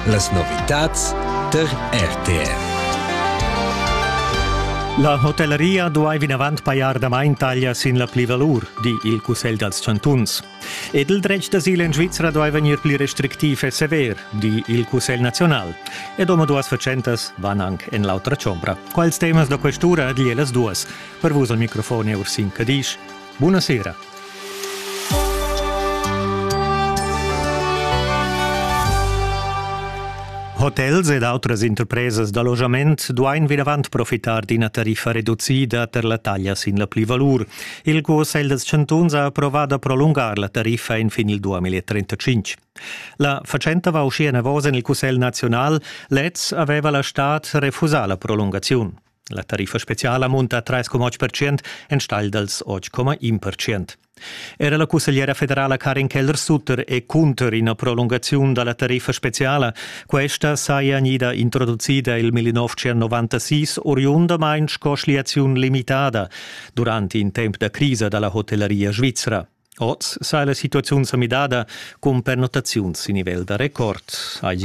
Las novitads tar RTR. La hotelleria duai vinavant pajar damain taglia sin la plivalur, di il Cussegl dals chantuns. Ed il dretg d'asil en Svizra duai vegnir pli restrictiv e sever, di il Cussegl naziunal. Ed omaduas fatschentas van anc en l'autra chombra. Quals temas da quest'ura di las duas? Per vus al microfon è Ursin Cadisch. Buna sera. Hotels ed outras interpresas da logiament duain vinavant profitar d'ina tariffa reducida per la taglia sin la plivalur. Il Cussegl dels Chantuns ha approvà da prolungar la tariffa en fin il 2035. La fatschenta va uschia enavos en il Cussegl naziunal. Lez aveva la stad refusà la prolungaziun. La tariffa speciala munta 3,8% enstagl dals 8,1%. Era la cussegliera federala Karin Keller-Sutter è cunter ina prolungaziun da la tariffa speciala. Questa saja gnida introducida il 1996 oriundamain sco schliaziun limitada durant in temp da crisa da la hotellaria svizra. Oz sa la situaziun sa midada cun pernottaziuns sin nivel da record, hai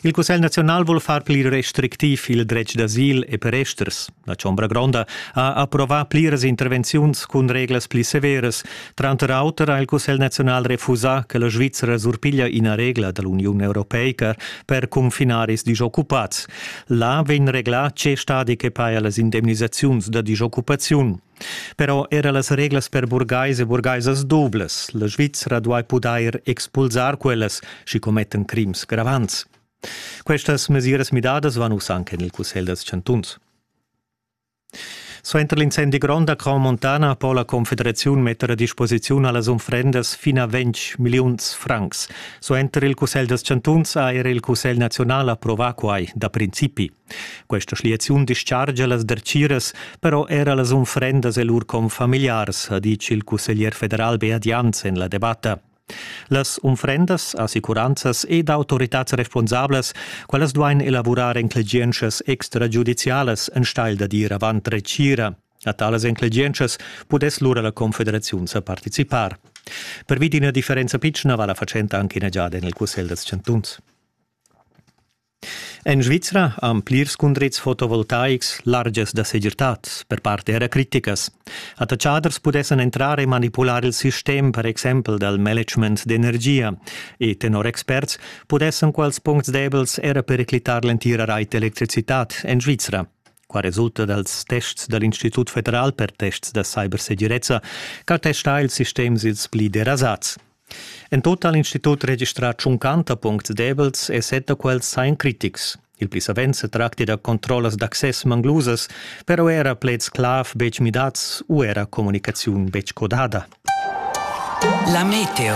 Il Cussegl naziunal vul far pli restrictiv il dretg d'asil e per esters. La Chombra Gronda ha approvà pliras intervenziuns cun reglas pli severas. Tranter auter ha il Cussegl naziunal refusà che la Svizzera surpiglia ina regla da l'Uniun europeica per confinaris disoccupads. Là vegn reglà tge stadi che paja las indemnisaziuns da disoccupaziun. Però era las reglas per burgais e burgaisas dublas. La Svizra duai pudair expulsar quellas, sch'i commettan crims gravants. Questas mesiras midadas van uss anche en il Cussegl dals chantuns. Suenter l'incendi grond a Crau Montana po la Confederaziun metter a disposiziun a las unfrendas fin a 20 milliuns francs. Suenter il Cussegl dals chantuns ha era il Cussegl naziunal approvà quai da principi. Questa schliaziun dischargia las dertgiras, però era las unfrendas e lur confamiliars, ha ditg il cusseglier federal Beat Jans en la debatta. Las unfrendas, assicuranzas ed autoritads responsablas, quellas duain elavurar enclegientschas extragiudizialas enstagl da dir avant retgira. A talas enclegientschas pudess lura la confederaziun sa participar. Pervi d'ina differenza pitschna va la fatschenta anche ina giada en il cussegl da chantuns. En Svizra han plirs cundrits fotovoltaics largias da segirtad, per part era criticas. Attatschaders pudessan entrar e manipular il sistem, per exempel dal management d'energia, e tenor experts pudessan quels puncts debels era periclitar l'entira rait d'electricitad en Svizra. Qua resulta dals tests da l'Institut federal per tests da cybersegirezza ch'attesta ils sistems ils pli derasats. En tut ha l'institut registrà tschuncanta puncts debels e set da quels sain critics. Il pli savens se tracti da controllas d'access manglusas, però era pleds clav betg midats u era communicaziun betg codada. La meteo